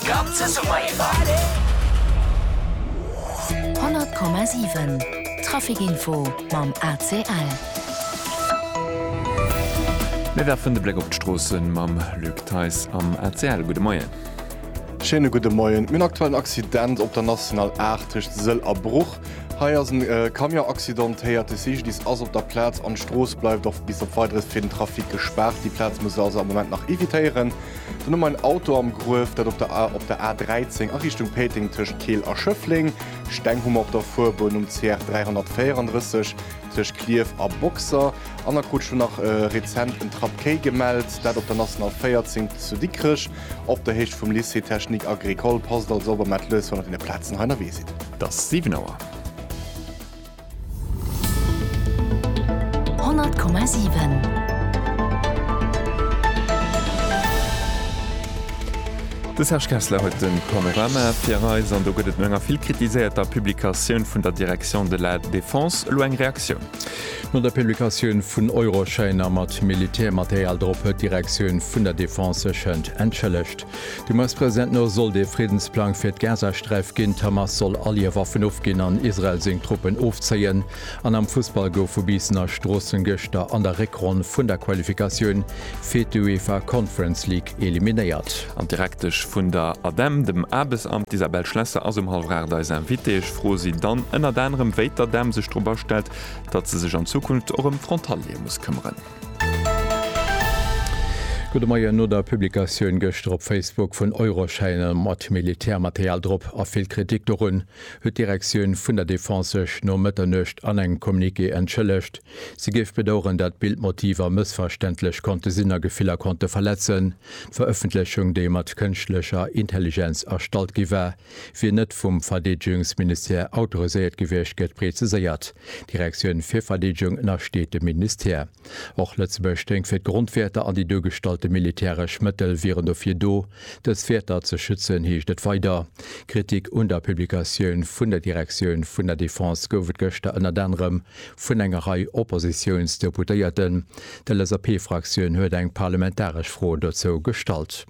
Club zu Summer-Efer. 100,7 Traficinfo mam ACL. Mir werfen de Bléck op d'Stroossen mam Luc Theis am ACL. Gudde Moien. Schéine gudde Moien. Mir hunn aktuell en Accident op der National 8 tëscht Sëll a Bruch. Hei ass en Camion accidentéiert. De CGDIS ass op der Plaz an d'Strooss bleift och bis op Weideres fir den Trafic gespaart. Déi Plaz muss ee also am Moment nach evitéieren. Dann hu mer en Auto am Gruef, dat op der A op der A13 a Richtung Péiteng tëscht Keel a Schëffleng. Steng hu mer op der Fuerbunn um CR 334 tëscht Clierf a Boxer. An da krut ech elo nach rezent en Trappkéi gemellt, dat op der National 14 zu Dikrech op der Héicht vum Lycée technique agricole. Passt also op a maacht lues, wann der deene Plazen hei ënnerwee sidd. Et ass 7 Auer. De Serge Kessler huet de Panorama fir eis an do gëtt et no enger vill kritiséierter Publikatioun vun der Direction de la Défense elo eng Reaktioun. No der Publikatioun vun Euroschäiner mat Militärmaterial drop huet d'Direktioun vun der Defense sech hënt entschëllegt. De US-President no sollt ee Friddensplang fir d'Gazasträif ginn, d'Hamas soll all hir Waffen ofginn an Israel seng Truppen ofzéien. An am Fussball gouf vu Biissen a Stroossen gëschter an der Réckronn vun der Qualifikatioun fir d'UEFA Conference League eliminéiert. An d'Direktesch vun der ADEM, dem Aarbechtsamt, d'Isabelle Schlesser ass um hallef 8 eis Invitée. Ech froe si dann ënnert anerem, wéi d'ADEM sech dorobber stellt, datt se sech an Zukunft och ëm d'Frontaliere muss këmmeren. Gudde Moien, No der Publikatioun gëschter op Facebook vun Euroschäine mat Militärmaterial drop a vill Kritik dorun, huet d'Direktioun vun der Defense sech no Mëtternuecht an engem Communiqué entschëllegt. Si géif bedaueren, dat d'Bildmotiver mëssverständlech konnte sinn a Gefiller konnte verletzen. D'Verëffentlechung, déi mat kënschtlecher Intelligenz erstallt gi war, wier net vum Verdeedegungsministère autoriséiert gewiescht, gëtt preziséiert. D'Direktioun fir Verdeedegung ënnersteet dem Ministère. Och Lëtzebuerg stéing fir d'Grondwäerter an déi duergestallte militäresch Mëttel wieren dofir do, dës Wäerter ze schützen, heescht et weider. Kritik un der Publikatioun vun der Direktioun vun der Defense gouf et gëschter ënnert anerem vun enger Rei Oppositiounsdeputéierten. D'LSAP-Fraktioun huet eng parlamentaresch Fro dozou gestallt.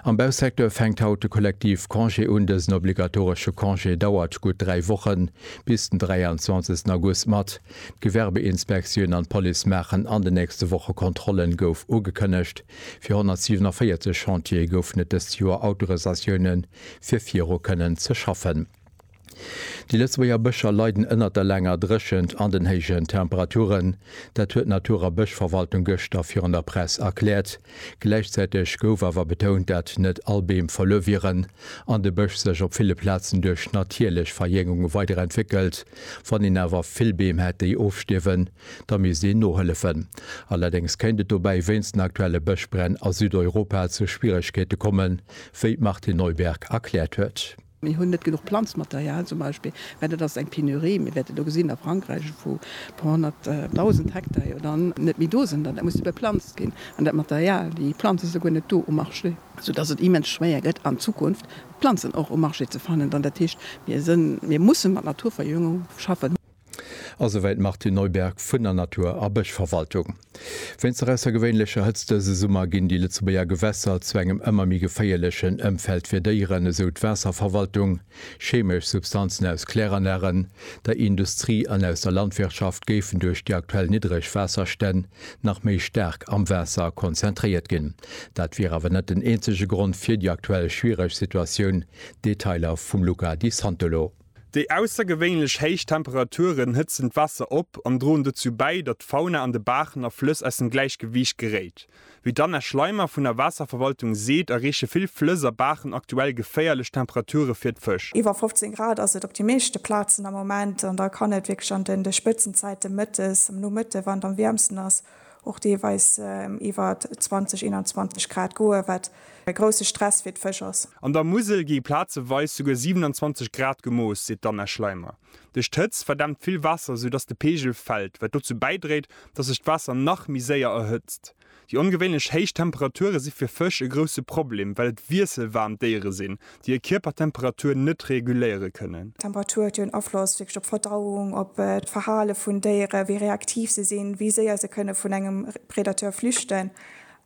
Am Bausecteur fänkt haut de Kollektiv Congé un. Dësen obligatoresche Congé dauert gutt dräi Wochen, bis den 23 August mat. D'Gewerbeinspektioun an d'Police maachen an de nächste Woche Kontrollen, gouf ugekënnegt. Fir 147 Chantiere goufen et dëst Joer Autorisatioune fir viru kënnen ze schaffen. Déi Lëtzebuerger Bëscher leiden ënnert der laanger Dréchent an den héijen Temperaturen. Dat huet d'Natur a Bëschverwaltung gëschter virun der Press erkläert. Gläichzäiteg gouf awer betount, dat net all Beem verluer wieren an de Bësch sech op ville Plazen duerch natierlech Verjängung weiderentwéckelt. Wann een awer vill Beem hätt, déi ofstierwen, da misst een nohëllefen. Allerdéngs kéint et dobäi wéinst den aktuelle Bëschbränn a Südeuropa zu Schwieregkeete kommen, wéi d'Martine Neuberg erkläert huet. Mir hunn net genuch Planzmaterial zum Beispill, mä dat ass eng Penurie. Mir wäerte do gesinn a Frankräich, vu puer honnert dausend Hektar jo dann net méi do sinn, dat muss beplanzt ginn. An dat Material, déi Planze si guer net do um Marché, soudass et immens schwéier gëtt an Zukunft Planzen och um Marché ze fannen. Dann, dat heescht, mir musse mat Naturverjüngung schaffen. A souwäit d'Martine Neuberg vun der Natur a Bëschverwaltung. Wéinst der aussergewéinlecher Hëtzt dëse Summer ginn déi Lëtzebuerger Gewässer zu engem ëmmer méi geféierlechen Ëmfeld fir Déieren, esou d'Waasserverwaltung. Cheemesch Substanzen aus Kläranlagen, der Industrie an aus der Landwirtschaft géifen duerch déi aktuell niddreg Waasserstänn nach méi staark am Waasser konzentréiert ginn. Dat wier awer net den eenzege Grond fir déi aktuell schwiereg Situatioun. Detailer vum Luca Di Santolo. Déi aussergewéinlech héich Temperaturen hëtzen d'Waasser op an droen dozou bäi, datt d'Fauna an de Baachen a Flëss aus dem Gläichgewiicht geréit. Wéi d'Anna Schleimer vun der Waasserverwaltung seet, erreeche vill Flëss a Baachen aktuell geféierlech Temperature fir d'Fësch. Iwwer 15 Grad ass et op de meeschte Plazen am Moment an da kann et wierklech an de Spëtzenzäite mëttes, am Nomëtte wann et am wiermsten ass, och deelweis iwwer 20, 21 Grad goe, wat e grousse Stress fir d'Fësch ass. An der Musel gi plazeweis souguer 27 Grad gemooss, seet d'Anna Schleimer. Duerch d'Hëtzt verdämpt vill Waasser, sou datt de Peegel fält, wat dozou bäidréit, datt sech d'Waasser nach méi séier erhëtzt. Déi ongewéinlech héich Temperature si fir Fësch e grousse Problem, well et wiesselwaarm Déiere sinn, déi hir Kierpertemperatur net reguléiere kënnen. D'Temperatur huet jo en Afloss wierklech op d'Verdauung, op d'Verhale vun Déieren, wéi reaktiv se sinn, wéi séier se kënne vun engem Predateur flüchten.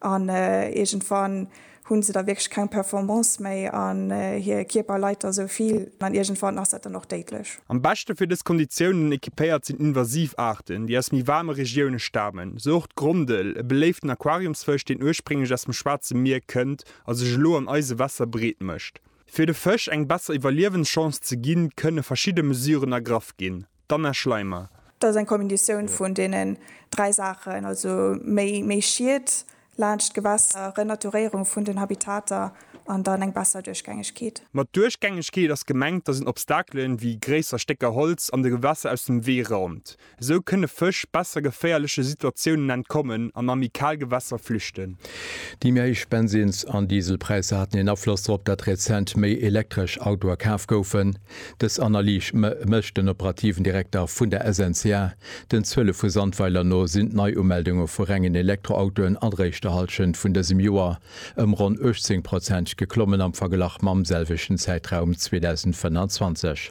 An iergendwann hu se da wierklech keng Performance méi an hir Kierper leit da sou vill an iergendwann ass dat dann och déidlech. Am beschte fir dës Konditiounen equipéiert sinn invasiv Aarten, déi aus méi waarme Regioune stamen, sou och d'Grondel, e beléiften Aquariumsfësch, deen ursprénglech aus dem Schwaarze Mier kënnt a sech elo an eise Wässer breet mécht. Fir de Fësch eng besser Iwwerliewenschance ze ginn, kënne verschidde Mesuren ergraff ginn. D'Anna Schleimer. Dat ass eng Kombinatioun vun deenen dräi Saachen, also méi Schiet laanscht d'Gewässer, Renaturéierung vun den Habitater an dann eng besser Duerchgängegkeet. Mat Duerchgängegkeet ass gemengt, dass een Obstakelen, wéi gréisser Stécker Holz, an de Gewässer aus dem Wee raumt. Esou kënne Fësch besser geféierleche Situatiounen entkommen an amikal Gewässer flüchten. Déi méi héich Bensins an Dieselpräisser haten een Afloss drop, datt rezent méi elektresch Autoe kaf goufen. Dës Analys mécht den operativen Direkter vun der SNCA. Den Zuele vu Sandweiler no sinn d'Neiumeldunge vu rengen Elektroautoen an der éischter Hallschent vun dësem Joer ëm ronn 18 Prozent geklommen am Verglach mam selwechten Zäitraum 2025.